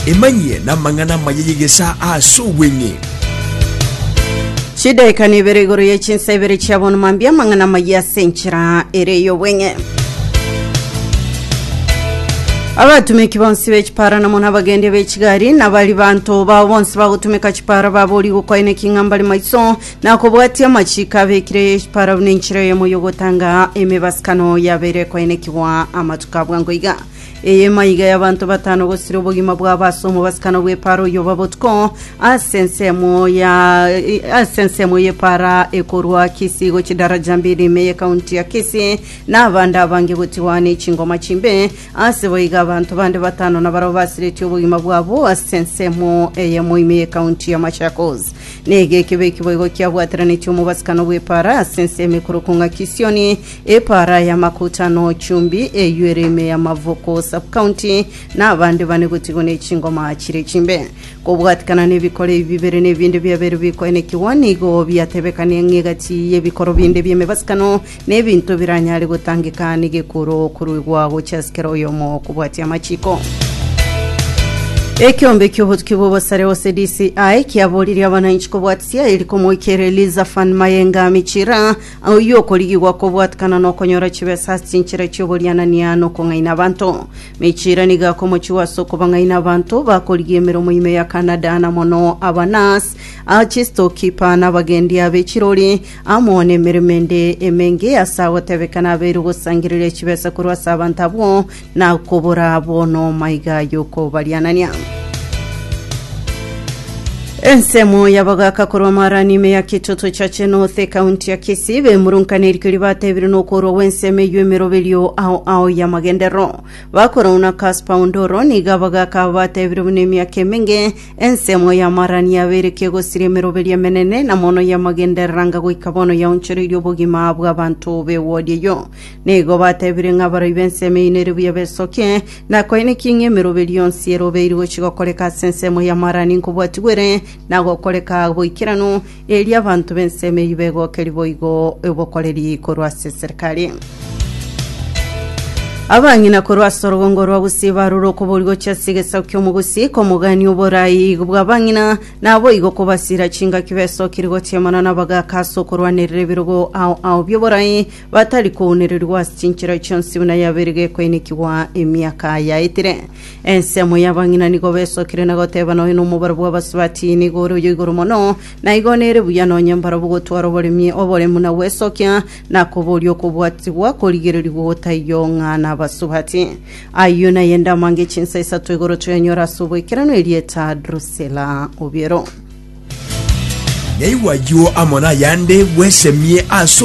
Emanyie namang'ana amaya y'egesaa ase obweng'e. Chidaeka nibere igoro ye chinsa ibere chia bono mambia amang'ana amaya ase enchera ere y'obweng'e. Abatumeki bonsi be chipara na mono abagendi be chigari na bari banto bao bonsi bagotumeka chipara babori gokoina king'a mbare maiso na kobwatia amachiko abekire ye chipara buna enchera eyemo yogotanga emebasikano yabere koinekigwa amatuko abwango iga. Eyemo aiga y'abanto batano gosira obogima bwabo ase omobasikano bw'epaara oyoba botuko ase ensemo ya ase ensemo y'epaara ekorwa Kisii gochia Daraja Mbili ime y'ekaunti ya Kisii na abande abange gotigwa ane chingoma chimbe. Ase boiga abanto bande batano nabarabwo basiretie obogima bwabo ase ensemo eyemo ime y'ekaunti ya Machakos. Nege ekibe ekiboigo kiabwateranetie omobasikano bw'epaara ase ensemo ekorokwa ng'a Kisioni Epaara ya Makuta na Ochumbi, eyio ere ime ya Mavoko Sub-County, na abande bane gotigwa ne chingoma chire chimbe. Kobwatikana nebikoro ebi bibere na ebinde biabeire bikoenekigwa, nigo biatebekania ng'a egati y'ebikoro binde bi'emebasikano na ebinto biranyare gotangeka negekuro koruigwa gochia ase kera oyomo kobwatia amachiko. Ekeombe ki'obotuki bw'obosare gose DCI kiaboririe abananchi kobwatisia eri komoika ere Liza Van Mayenga Michira Oyio okorigigwa kobwatikana nokonyora chibesa ase chinchera chi'oborianania nokong'aina abanto. Mechira nigo akomochigwa ase okobang'aina abanto bakorigia emeromo ime ya Canada na mono aba nurse, a chistokipa na abagendi abe chirori amo nemeremo ende emenge ase agotebekana abeirwe gosangereria chibesa korwa ase abanto abwo Nakobora abo noma iga yokobarianania. Ensemo y'abagaka korwa Marani ime ya Kitoto Chache North ekaunti ya Kisii bemurunkanire erikio ribatebire nokorwa gw'ensemo eyio emeroberio ao ao y'amagenderero. Bakorwa na Casper Ondoro nigo abagaka abo batebire buna emiaka emenge ensemo ya Marani yaberetie gosiria emeroberio emenene na mono y'amagenderero anga goika bono yaonchoreirie obogima bw'abanto b'ewodi eyio. Nigo batebire ng'a abaroi b'ensemo eyio nere buya besokie, na koenekie ng'a emeroberi yonsi erobeiri gochia gokoreka ase ensemo y'amaraani nkobwatigwa ere, na gokoreka boikeranu, erio abanto b'ensemo eyio begokerie boigo obokoreri korwa ase eserekari. Abang'ina korwa ase orogongo rwa Gusii barure okobori gochia ase egesaku ki'omogusi komogania oborai bw'abang'ina, naboigo kobasiira chingaki besokire goteemana nabagaaka ase okorwanerera ebirogo ao ao bi'oborai batari kounererigwa ase chinchera chionsi buna yabeire gekoinekigwa emiaka yaetire. Ensemo y'abang'ina nigo besokire na goteba noyo nomobaro bw'abasubati nigo ore oyo igoro mono, na igo nere buya nonye mbarabwo gotwara oboremi oboremu na gwesokia, na koboria okobwatigwa korigererigwe gotaiyo ng'a nabasubati. Ayio naye ende amange chinsa isato igoro toyanyore ase oboikeranu erieta Drusila Obiero. Naigwa ayio amo nayande bwesemie ase